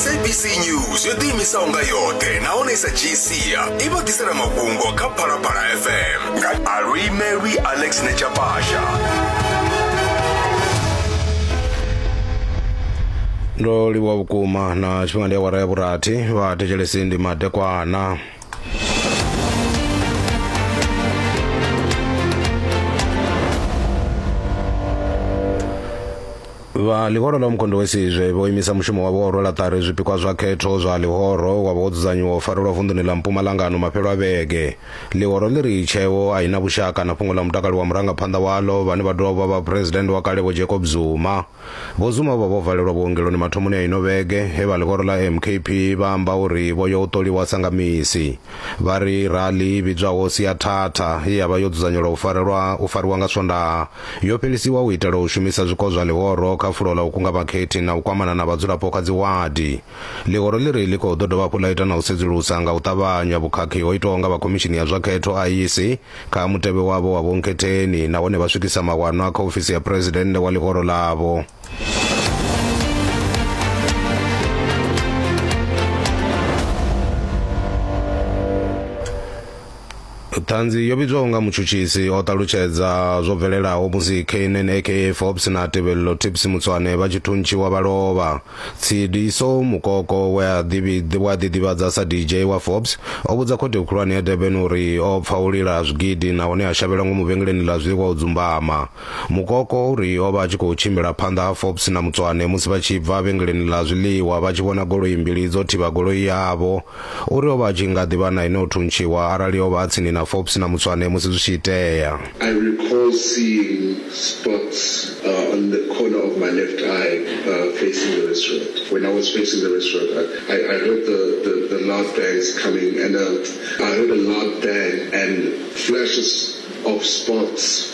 sabc news yo ḓiimisaho nga yoṱhe nahone sa gcia i vha ḓisela mafhungo kha phalaphala fm nga aluimelwi alex nechapasha ndo livhuwa vhukuma na tshifhinga ndi awara ya vhurathi vha thetshelesi ndi madekwana Vha Ḽihoro ḽa Umkhonto we Sizwe vho imisa mushumo wavho wa u rwela ṱari zwipikwa zwa khetho zwa ḽihoro wa vha wo dzudzanyiwa u farelwa vunḓuni ḽa Mpumalanga ano mafhelo a vhege. Ḽihoro ḽi ri tsheo a i na vhushaka na fhungo ḽa mutakalo wa murangaphanḓa waḽo vhane vha dovha u vha vhaphuresidennde wa kale Vho Jacob Zuma. Vho Zuma vho vha vho valelwa vhuongeloni mathomoni a ino vhege he vha ḽihoro ḽa MKP vha amba uri vho yo u ṱoliwa sa nga misi. Vha ri rali i vhidzwaho Siathatha ye ya vha yo dzudzanyelwa u farelwa u fariwa nga Swondaha Yo fhelisiwa u itela u shumisa zwiko zwa ḽihoro kha fulo ḽa u kunga vhakhethi na u kwamana na vhadzulapo kha dziwadi. Ḽihoro ḽi ri ḽi khou ḓo dovha hafhu ḽa ita na u sedzulusa nga u ṱavhanya vhukhakhi ho itwaho nga vha Khomishini ya zwa Khetho, IEC, kha mutevhe wavho wa vhonkhetheni nahone vha swikisa mawanwa kha ofisi ya Phresidennde wa ḽihoro ḽavho. ṱhanzi yo vhidzwaho nga mutshutshisi o ṱalutshedza zwo bvelelaho musi knn aka forbes na tevhelelo tips mutswane vha tshi thuntshiwa vha lovha tshidiso mukoko we a ḓiḓivhadza sa dj wa forbes o vhudza khothe khulwane ya durban uri o pfa u lila zwigidi nahone a shavhela ngomu vhengeleni ḽa zwiḽiwa u dzumbama Mukoko u ri o vha a tshi khou tshimbila phanḓa ha Forbes na Mutswane musi vha tshi bva vhengeleni ḽa zwiḽiwa vha tshi vhona goloi mbili dzo thivha goloi yavho. U ri o vha a tshi nga ḓi vha na ene o thuntshiwa arali o vha a tsini na Forbes na Mutswane musi zwi tshi itea. I recall seeing spots on the corner of my left eye facing the restaurant. When I was facing the restaurant, I I heard the the the loud bangs coming and I heard a loud bang and flashes of spots.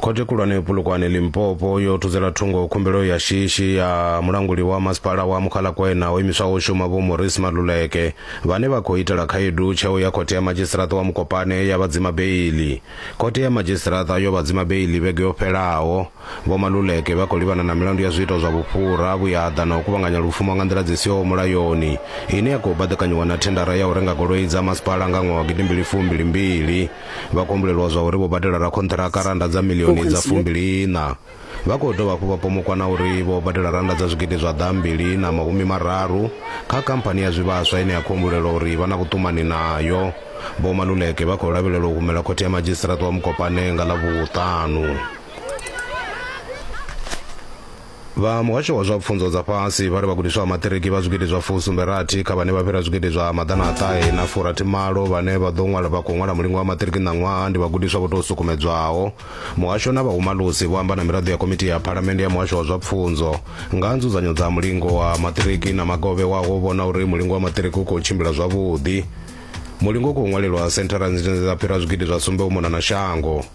Khothe khulwane yo Polokwane Limpopo yo thudzela thungo khumbelo ya shishi ya mulanguli wa masipala wa Mukhalakwena ho imiswaho shuma Vho Maurice Maluleke vhane vha khou itela khaedu tsheo ya khothe ya madzhisiṱiraṱa wa Mukopane ya vha dzima beili. Khothe ya madzhisiṱiraṱa yo vha dzima beili vhege yo fhelaho. Vho Maluleke vha khou livhana na milandu ya zwiito zwa vhufhura, vhuyaḓa na u kuvhanganya lupfumo nga nḓila dzi siho mulayoni ine ya khou baḓekanyiwa na thendara ya u renga goloi dza masipala nga ṅwaha wa gidimbili fumbili mbili. vha khou humbulelwa zwa uri vho badela rakhonṱhiraka randa dza milioni dza fumbiliiṋa vha khou dovha hafhu vha pomokwa na uri vho badela randa dza zwigidi zwa ḓa mbili na mahumi mararu kha khamphani ya zwivhaswa ine ya khou humbulelwa uri vha na vhuṱumani nayo vho maluleke vha khou lavhelelwa u humela khothe ya madzhisiṱiraṱa wa mukopane nga ḽa vhuṱanu Vha Muhasho wa zwa Pfunzo dza Fhasi vha ri vhagudiswa vha maṱiriki vha zwigidi zwa fu sumbe rathi kha vhane vha fhira zwigidi zwa maḓana a ṱahe na fu rathi malo vhane vha ḓo ṅwala vha khou ṅwala mulingo wa maṱiriki ṋaṅwaha ndi vhagudiswa vho tou sukumedzwaho. Muhasho na vhahumalusi vho amba na miraḓo ya Komiti ya Phalamennde ya Muhasho wa zwa Pfunzo nga ha nzudzanyo dza mulingo wa maṱiriki na maga o vhewaho u vhona uri mulingo wa maṱiriki u khou tshimbila zwavhuḓi. Mulingo u khou ṅwalelwa senthara nzhi dzine dza fhira zwigidi zwa sumbe u mona na shango.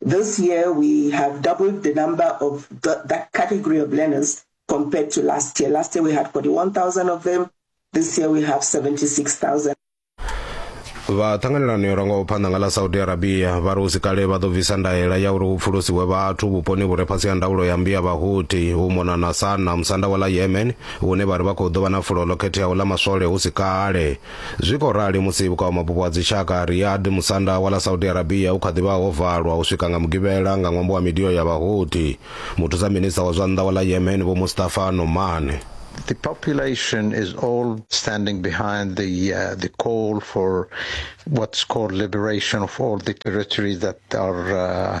This year, we have doubled the number of the, that category of learners compared to last year. Last year, we had 41,000 of them. This year, we have 76,000. vha ṱhanganelano yo rangaho phanḓa nga ḽa saudi arabia vha ri usikale vha ḓo bvisa ndaela ya uri hu pfulusiwe vhathu vhuponi vhu re fhasi ha ndaulo ya mbi ya vhahuti hu mona na sana musanda wa ḽa yemen hune vha ri vha khou ḓo vha na fulo ḽo khetheaho ḽa maswole hu si kale Zwi khou rali musi vhukavhamabupo ha dzitshaka Riyadh, musanda wa ḽa Saudi Arabia u kha ḓi vha ho valwa u swika nga Mugivhela nga ṅwambo wa midio ya Vhahouthi. Muthusa minista wa zwa nnḓa wa ḽa Yemen Vho Mustafa Noman. The population is all standing behind the uh, the call for what's called liberation of all the territories that are uh,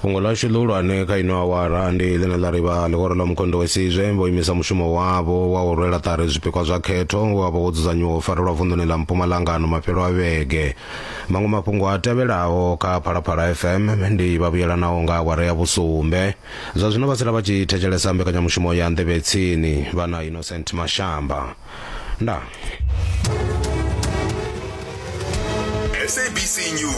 fhungo ḽashu ḽihulwane kha ino awara ndi ḽine ḽa ri vha ḽihoro ḽa mukondo wa sizwe vho imisa mushumo wavho wa u rwela ṱari zwipikwa zwa khetho we wa vha wo dzudzanyiwa u farelwa vunḓuni ḽa mpumalanga ano mafhelo a vhege maṅwe mafhungo a tevhelaho kha phalaphala fm ndi vha vhuyelanaho nga awara ya vhusumbe zwa zwino vha sala vha tshi thetshelesa mbekanyamushumo ya nḓevhe tsini vha na innocent mashamba nda sabc news